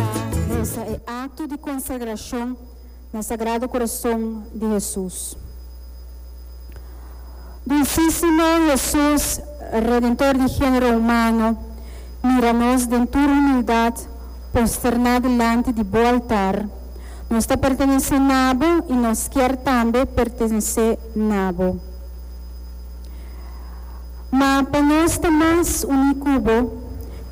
pa resa e akto di konsagrashon na Sagrado Kurason di Hesus. Dulsísimo Hesus, Redentor di género humano, mira nos den tur humildat posterná dilanti di Bo altar. Nos ta pertenesé na Bo i nos kier tambe pertenesé na Bo. Ma pa nos ta mas uní ku bo,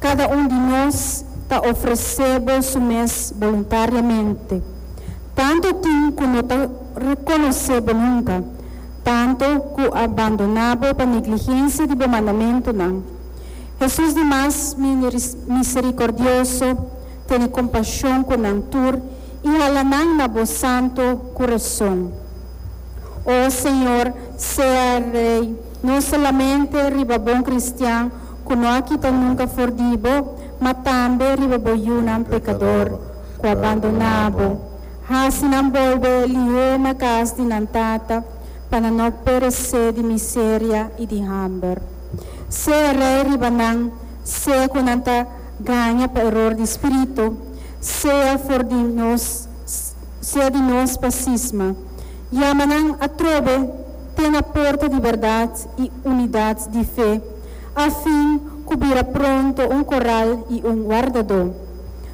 kada un di nos ta ofresé bo su mes boluntariamente. Tantu tin ku no ta rekonosé bo nunka, tantu ku a bandoná bo pa negligensia di bo mandamentunan. Hesus di Mas Miserikordioso tene kompashon ku nan tur i hala nan na bo santu kurason. O Señor, sea Rei No solamente riba bon cristian cu no a kita nunca for di bo, ma tambe riba bo yunan pecador cu a bandona bo. Haci nan bolbe lihe na cas di nan Tata, pa nan no perece di miseria y di hamber. Sea Rey riba nan, sea cu nan ta gaña pa error di spirito, sea for di nos, sea di nos pa sisma. Yama nan atrobe te na porta di berdad i unidad di fe, afin cu bira pronto un corral i un wardadó.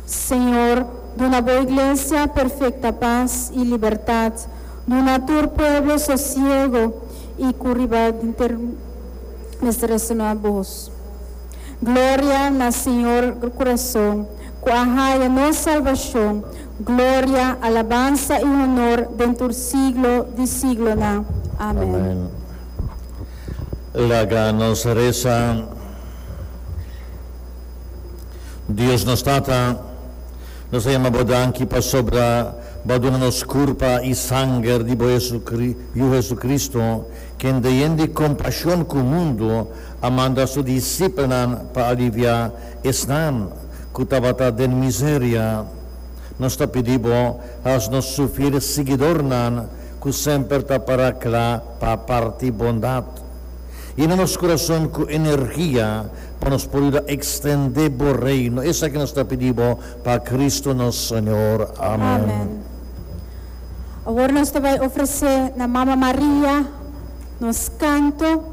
Señor, duna bo Iglesia perfecta paz i libertad, duna tur pueblo sosiego i cu riba denter mester resonó Abos. Gloria na Señor Corazon. ku a haya nos salbashon, gloria, alabansa i honor den tur siglo di siglonan. Amèn. Amèn. Laga nos resa. Dios nos Tata, nos ta yama bo danki pasobra bo a duna nos kurpa i sanger di bo Yu Jesucristo, ken dehen di kompashon ku mundu a manda su disipelnan pa aliviá. Esnan ku tabata den miseria, nos ta pidi bo, haz nos sufir siguidornan ku semper ta para kla pa parti bondat. Yena nos kurason ku energia pa nos por yuda ekstendé bo Reino. Esaki nos ta pidi bo pa Kristu nos Señor. Amen. Awor nos ta bai ofresé na Mama Maria nos kanto.